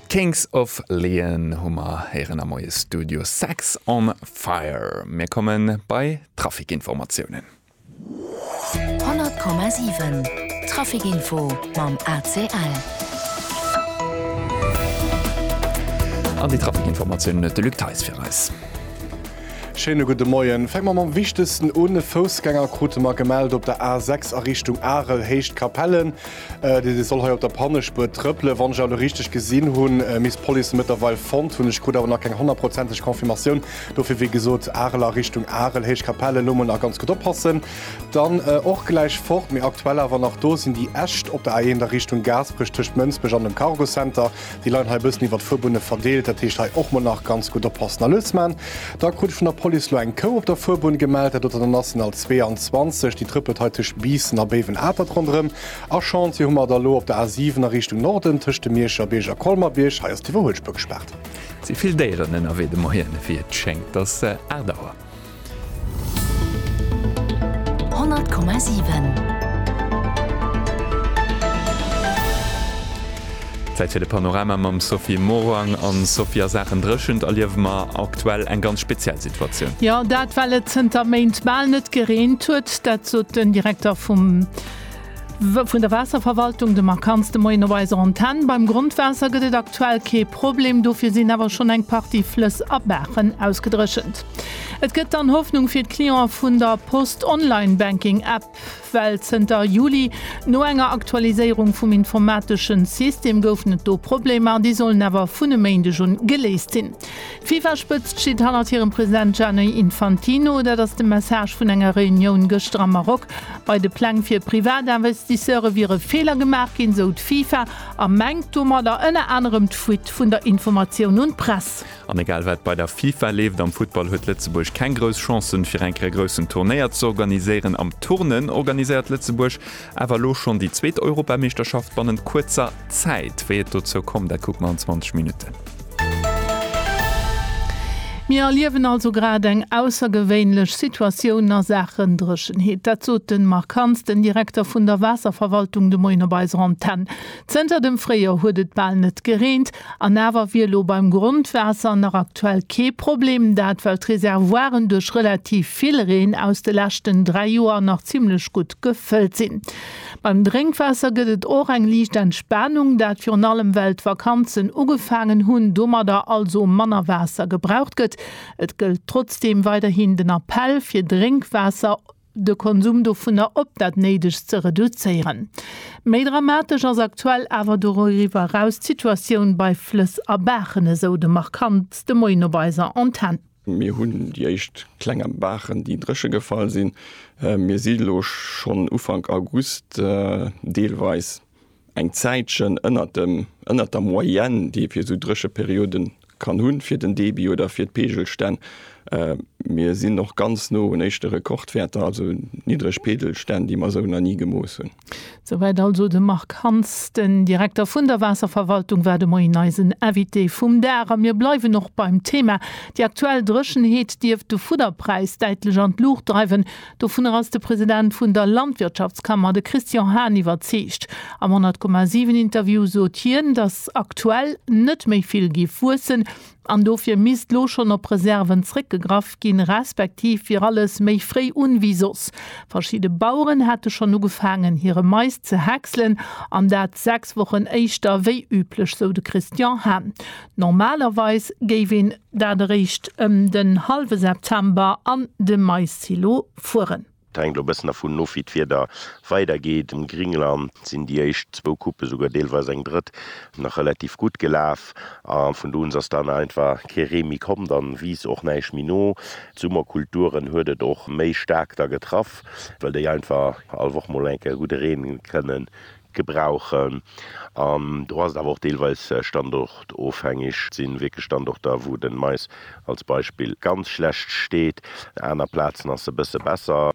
D'Kings of Leon hu mer héieren am Moie Studio Sex on Fire. Mir komme bei d'Trafikinformatiounen. 100,7 Trafikinfo mam ACL. An déi Trafikinformatiounen huet de Luc Theis fir eis. Schéine gudde Moien. Fänke mer mam wichtegsten un, E Foussgänger krute mer gemellt op der A6 a Richtung Arel, Héicht Capellen. Dee soll hei op der Pannespuer trëppelen. Wann ech elo richteg gesinn hunn, misst d'Police en mëttlerweil fonnt hunn. Ech krut awer nach keng honnertprozenteg Confirmatioun. Dofir, wéi gesot, Arel a Richtung Arel, Héichkapell, elo mol nach ganz gutt oppassen. Dann och gläich fort, mee aktuell awer nach do, sinn déi Äscht op der A1 a Richtung Gaasperech, tëscht Mënsbech an dem Cargo Center. Déi leien hei e bëssen iwwer d'Fuerbunne verdeelt, dat heescht hei och mol nach ganz gutt oppassen. A Lutzman, da krut ech vun der Police elo eng Kou op der Fuerbunn gemellt, dat doten an ass den Al 22, déi trëppelt hei tëscht Biissen a Béiwen-Atert ronderëm. A Chantier hu mer et elo op der A 7 a Richtung Norden tëscht dem Mierscher Bierg a Colmer-Bierg, hei ass d'Iwwerhuelspuer gespaart. Et si vill Déieren ënnerwee de Moien, wéi et schéngt ass Aart Auer. 100,7. Zäit fir de Panorama mam Sophie Morang. An Sophie, a Saachen Dréchent erliewe mer aktuell eng ganz speziell Situatioun. Jo, dat well et zënter Méint bal net gereent huet. Dat sot den Direkter vum. Vun der Waasserverwaltung de Marc Hans, De Moien op eiser Antenn. Beim Grondwaasser gëtt et aktuell kee Problem, dofir sinn awer schonn eng Partie Flëss a Baachen ausgedréchent. Et gëtt dann Hoffnung fir d'Clientë vun der Post Online-Banking App, well zënter Juli no enger Aktualiséierung vum informateschen System goufen et do Problemer, déi sollen awer vun e Méindeg un geléist sinn. D'Fifa-Spëtzt steet hannert hirem President Gianni Infantino. Dat ass de Message vun enger Reunioun gëschter am Maroc. Bei de Pläng fir Privatinvestisseure wiere Feeler gemaach ginn, sou d'Fifa, a mengt domadder ënner anerem d'Fuite vun der Informatioun un d'Press. An egal wat bei der Fifa leeft, am Futtball huet Lëtzebuerg keng grouss Chancen, fir eng Kéier e groussen Turnéier z'organiséieren. Am Turnen organiséiert Lëtzebuerg Awer elo schonn déi zweet Europameeschterschaft bannent kuerzer Zäit. Wéi et dozou komm, dat kucke mer an 20 Minutten. Mir erliewen also grad eng aussergewéinlech Situatioun a Saachen Dréchenheet. Dat sot de Marc Hans, den Direkter vun der Waasserverwaltung de Moien op eiser Antenn. Zënter dem Fréijoer huet et bal net gereent. An awer wier elo beim Grondwaasser nach aktuell kee Problem, dat well d'Reservoiren duerch relativ vill Reen aus de leschten dräi Joer nach zimmlech gutt gefëllt sinn. Beim Drénkwaasser gëtt et och eng liicht Entspanung, dat virun allem well d'Vakanzen ugefaangen hunn, domadder also manner Waasser gebraucht gëtt. Et gëllt trotzdeem weiderhin den Appell, fir Drénkwaasser. de Konsum dovunner op dat Néidegst ze reduzéieren. Méi dramatesch ass aktuell awer doriwwer eraus d'Situatioun bei Flëss a Baachen, esou de Marc Hantz de Moien op eiser Antenn. Mir hunn déi éischt klenger Baachen, déi dréche gefall sinn. Mir si lo schonn Ufank August deelweis eng Zäitchen ënnert dem, ënnert der Moyenne, déi ee fir esou dréche Periode kann hunn, fir den Debit oder fir d'Peegelstänn. Mir sinn och ganz no un éischte Rekordwäerter, also niddreg Peegelstänn, déi mer esou nach ni gemooss hunn. Souwäit also de Marc Hans, den Direkter vun der Waasserverwaltung war de Moien eisen Invité vum Dag. A mir bleiwen och beim Thema. Déi aktuell Dréchenheet dierft de Fudderpräis däitlech an d'Luucht dreiwen. Dovunner ass de President vun der Landwirtschaftskammer, de Christian Hahn, iwwerzeegt. Am 100,7 Interview sot hien, datt aktuell net méi vill géif wuessen an dofir misst lo schonn op Reserven zréckgegraff ginn, respektiv wier alles méi fréi un wéi soss. Verschidde Baueren hätte schonn ugefaangen hire Mais ze häckselen an dat 6 Wochen éischter wéi üblech, sou de Christian Hahn. Normalerweis géif een dat eréischt ëm den hallwe September an de Maissilo fueren. Et hänkt elo e bëssen dervun of, wéi d'Wieder weidergeet. Um Gringland sinn déi éischt zwou Coupe, esouguer deelweis eng drëtt, nach relativ gutt gelaf. A vun do un ass dann einfach kee Ree méi komm. Dann wiisst och näischt méi no. D'Summerkulturen huet et och méi staark da getraff, well déi einfach all Woch mol enke gudde Reen kënnen gebrauchen an do ass et awer och deelweis standortofhängeg. Et sinn wierklech Standorter wou den Mais als Beispill ganz schlecht steet, aner Plazen ass e bësse besser.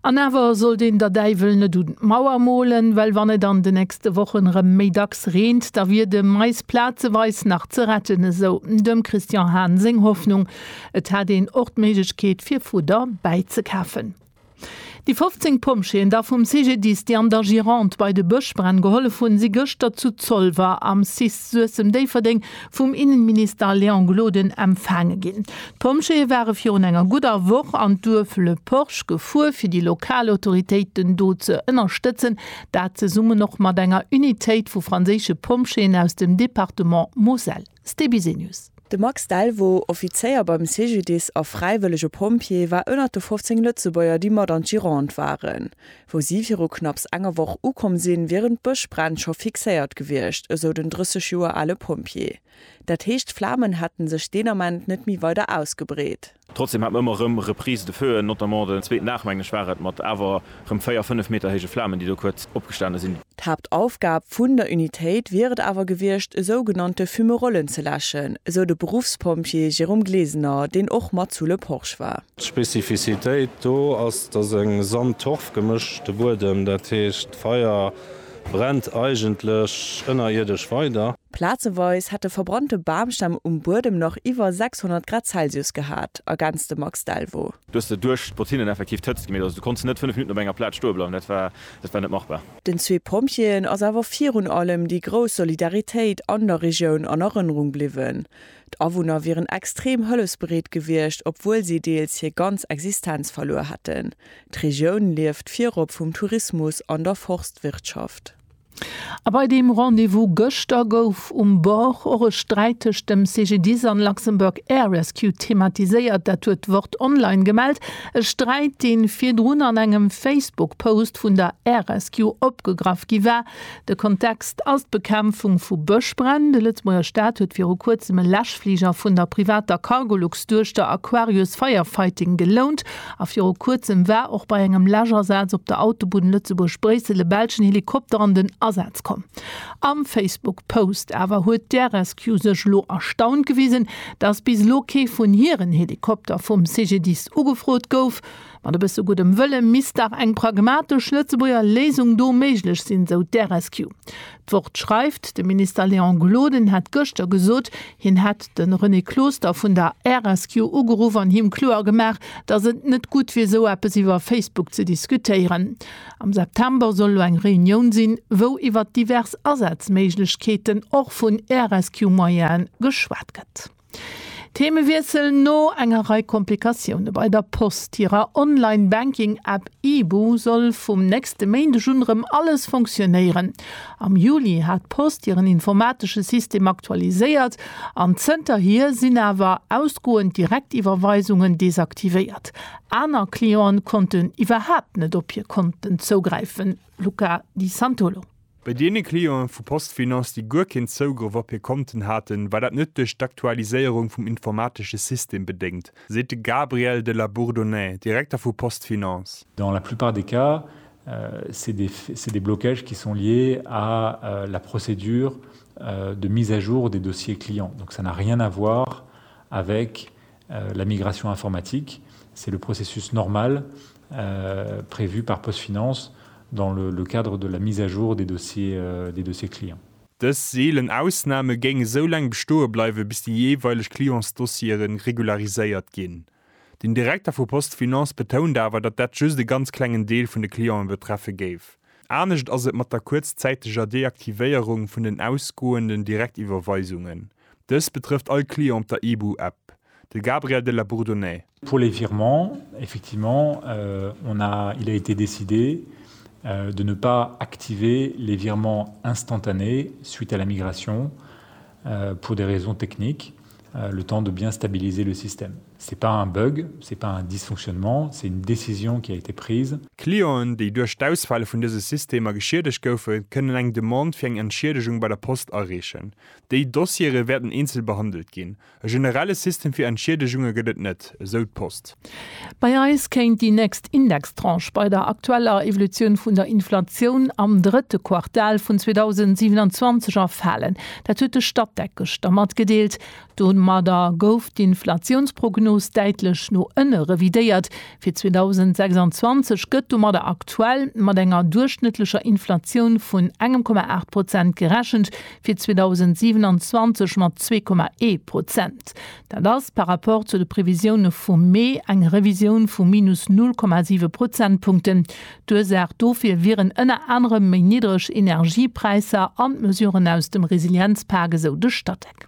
An awer sollt een der Däiwel net un d'Mauer molen, well wann et an de nächste Wochen erëm méi dacks reent, da wier de Mais plazeweis nach ze retten, esou dem Christian Hahn seng Hoffnung. Et hätt een och d'Méiglechkeet fir Fudder bäizekafen. Déi 15 Pompjeeën da vum CGDIS, déi an der Gironde bei de Bëschbränn gehollef hunn, si gëschter zu Zolwer am cis Suessem-Déifferdeng vum Innenminister Léon Gloden empfaange ginn. D'Pompjeeë ware virun enger gudder Woch an d'Duerf Le Porche gefuer, fir déi lokal Autoritéiten do ze ënnerstëtzen, dat zesummen och mat enger Unitéit vu franséische Pompjeeën aus dem Departement Moselle. StBusynews. De Max Delvaux, Offizéier beim CGDIS a fräiwëllege Pompjee, war ënnert de 15 Lëtzebuerger, déi mat an d'Gironde waren. Wou si viru knapps enger Woch ukomm sinn, wieren d'Bëschbränn scho fixéiert gewiescht, esou den 30 Joer ale Pompjee. Dat heescht, d'Flamen hätte sech deen Ament net méi weider ausgebreet. Trotzdem hat mer ëmmer erëm Reprises de feu, notamment den zweeten Aach, mengen ech, war et, mat awer erëm véier, fënnef Meter héije Flamen, déi do kuerz opgestane sinn. D'Haaptaufgab vun der Unitéit wier et awer gewiescht, esou genannte Fumerollen ze läschen, esou de Beruffspompjee Jérôme Glesener, deen och mat zu Le Porch war. D'Spezifisitéit do ass, dass e Sand-Torf-gemëschte Buedem, dat heescht, d'Feier brennt eigentlech ënnerierdesch weider. Plazeweis hätte verbrannte Bamstämm um Buedem nach iwwer 600 Grad Celsius gehat, ergänzt de Max Delvaux. Du hues der duerch d'Botinnen effektiv d'Hëtzt gemierkt. Also du konnts net 5 Minutten op enger Plaz stoe bleiwen, dat war dat war net machbar. Den zwee Pompjeeën ass awer virun allem déi grouss Solidaritéit an der Regioun an Erënnerung bliwwen. D'Awunner wieren extrem hëllefsbereet gewiescht, obwuel si deels hir ganz Existenz verluer hätten. D'Regioun lieft virop vum Tourismus an der Forstwirtschaft. A bei deem Rendez-vous gëschter gouf um Bord och e Sträit tëscht dem CGDIS an Luxembourg Air Rescue thematiséiert. Dat huet d'Wort Online gemellt. E Sträit, dee virdrun an engem Facebook-Post vun der Air Rescue opgegraff gi war. De Kontext ass d'Bekämpfung vu Bëschbränn. De Lëtzebuerger Staat huet viru kuerzem e Läschfliger vun der privater Cargolux-Duechter Aquarius Firefighting gelount. A viru kuerzem war och bei engem Läschasaz op der Autobunn Lëtzebuerg-Bréissel e belschen Helikopter an den Asaz komm. Am Facebook-Post awer huet d'RSQ sech elo erstaunt gewisen, dass bis elo kee vun hiren Helikopter vum CGDIS ugefrot gouf. Mat e bësse guddem Wëlle misst dach eng pragmatesch Lëtzebuerger Léisung do méiglech sinn, sou d'RSQ. D'Wort schreift, De Minister Léon Gloden hätt gëschter gesot, hien hätt de René Closter vun der RSQ ugeruff an him kloer gemaach, datt et net gutt wier esou eppes iwwer Facebook ze diskutéieren. Am September soll elo eng Reunioun sinn, wou iwwer divers Asazméiglechkeeten, och vun RSQ-Moyene, geschwat gëtt. Themewiessel, No enger Rei Komplikatioune bei der Post hirer Online Banking App Ibu soll vum nächste Méindeg un erëm alles funktionéieren. Am Juli hat d'Post hiren informatesche System aktualiséiert an zënterhier sinn awer ausgoend Direktiwwerweisungen desaktivéiert. Aner Clienten konnten iwwerhaapt net op hir Konten zougräifen. Luca Di Santolo. Bei deene Clienten vu PostFinance, déi guer keen Zougrëff op hir Konten haten, war dat net duerch d'Aktualiséierung vum informatesche System bedéngt, seet de Gabriel de la Bourdonnais, Direkter vu PostFinance. Dans la plupart des cas, c'est des, c'est des blocages qui sont liés à la procédure de mise à jour des dossiers clients. Donc ça n'a rien à voir avec La migration informatique, c'est le processus normal prévu par PostFinance dans le cadre de la mise à jour des dossiers clients. Dës seelen Ausname géing esou laang bestoe bleiwen, bis déi jeeweileg Clientsdossiere regulariséiert ginn. Den Direkter vu PostFinance betount awer, datt dat just e ganz klengen Deel vun de Cliente betreffe géif. Anescht ass et mat der kuerzzäiteger Deaktivéierung vun den ausgoenden Direktiwwerweisungen. Dëst betrëfft all Client op der IBU App. De Gabriel de la Bourdonnais. Pour les virements, effectivement, on a, il a été décidé de ne pas activer les virements instantanés suite à la migration pour des raisons techniques, le temps de bien stabiliser le système. Ce n'est pas un bug, ce n'est pas un dysfonctionnement, c'est une décision qui a été prise. Clienten, déi duerch d'Ausfäll vun dëse Systemer geschiedegt goufen, kënnen eng Demande fir eng Entschiedegung bei der Post areechen. Déi Dossiere wäerten eenzel behandelt ginn. E generelle System fir Entschiedegunge gëtt et net, esou d'Post. Bei eis kéint déi nächst Indextranche bei der aktueller Evolutioun vun der Inflatioun am drëtte Quartal vun 2027 erfalen. Dat huet de Statec gëschter matgedeelt. Domadder gouf d'Inflatiounsprognos däitlech no ënne revidéiert, Fir 2026 gëtt domadder aktuell mat enger duerchschnëttlecher Inflatioun vun engem Komma aacht Prozent gerechent, fir 2027 mat zwee Komma ee Prozent. Dat ass par rapport zu de Previsioune vum Mee eng Revisioun vu minus null Komma siwe Prozentpunkten. D'Ursaach dofir wieren ënner anerem méi niddreg Energiepräisser an d'Mesuren aus dem Resilienzpak, esou de Statec.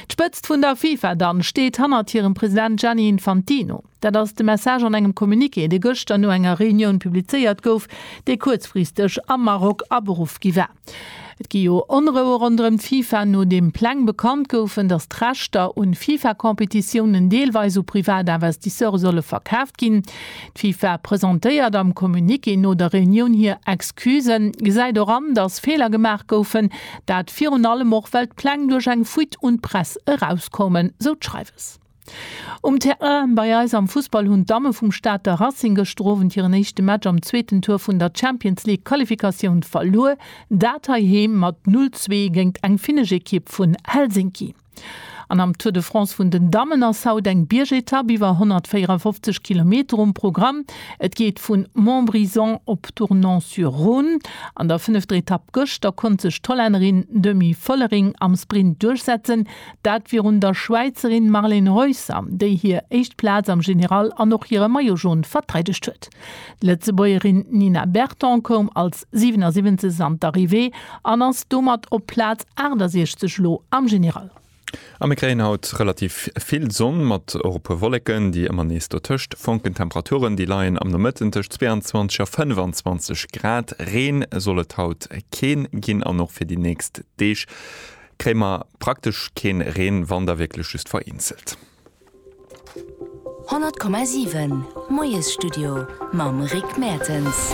D'Spëtzt vun der FIFA dann steet hannert hirem President Gianni Infantino. Dat ass de Message an engem Communiqué, dee gëschter no enger Reunioun publizéiert gouf, déi kuerzfristeg am Maroc aberuff gi war. Et gi jo Onroue ronderëm d'FIFA, nodeem Pläng bekannt goufen, datt d'Rechter un FIFA-Competitiounen deelweis u privat Investisseure solle verkaaft ginn. D'FIFA presentéiert am Communiqué no der Reunioun hir Excusen, gesäit och an, datt Feeler gemaach goufen, dat virun allem och well d'Pläng duerch eng Fuite un d'Press erauskoumen, sou d'Schreiwes. Um Terrain bei eis am Fussball hunn d'Damme vum Stater Racing gëschter Owend hiren éischte Match am zweeten Tour vun der Champions League Qualifikatioun verluer, dat heiheem mat 0, 2 géingt eng finnesch Ekipp vun Helsinki. An am Tour de France vun den Dammen ass haut eng Biergetapp iwwer 154 Kilometer um Programm. Et geet vu Montbrison op Tournon-sur-Rhône. An der fënnefter Etapp gëschter konnt sech d'Hollännerin Demi Vollering am Sprint duerchsetzen. Dat virun der Schwäizerin Marlen Reusser, déi hir éischt Plaz am General an och hire Maillot Jaune verteidegt huet. D'Lëtzebuergerin Nina Berton koum als 77 an d'Arrivée an ass domat op Plaz 68 elo am General. A mir kréien haut relativ vill Sonn, mat och e puer Wolleken, déi ëmmer nees dotëscht fonken. D'Temperaturen, déi leien am Nomëtten tëscht 22 a 25 Grad. Reen soll et haut keen ginn an och fir déi nächst Deeg kréie mer praktesch keen Reen, wann da wierklech just vereenzelt. 100,7 Moiesstudio mam Rick Mertens.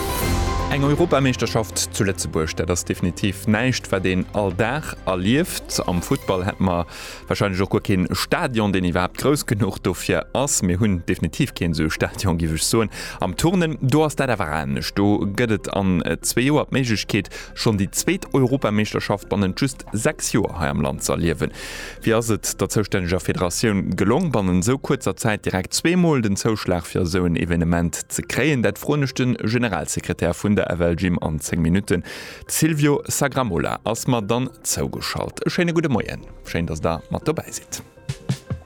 Eng Europameeschterschaft zu Lëtzebuerg, dat ass definitiv näischt, wat een all Dag erlieft. Am Futtball hätt mer warscheinlech och guer kee Stadion, deen iwwerhaapt grouss genuch dofir ass. Mir hunn definitiv keen esou e Stadion, géif ech soen. Am Turnen, do ass dat awer anescht. Do gëtt et an zwee Joer d'Méiglechkeet, schonn déi zweet Europameeschterschaft bannent just sechs Joer hei am Land ze erliewen. Wéi ass et der zoustänneger Federatioun gelong, bannent esou kuerzer Zäit direkt zwee Mol den Zouschlag fir esou en Evenement ze kréien? Dat froen ech de Generalsekretär vun der FL Gym an 10 Minutten. De Silvio Sagramola ass mer dann zougeschalt. E schéine gudde Moien. Schéin, dass Der mat dobäi sidd.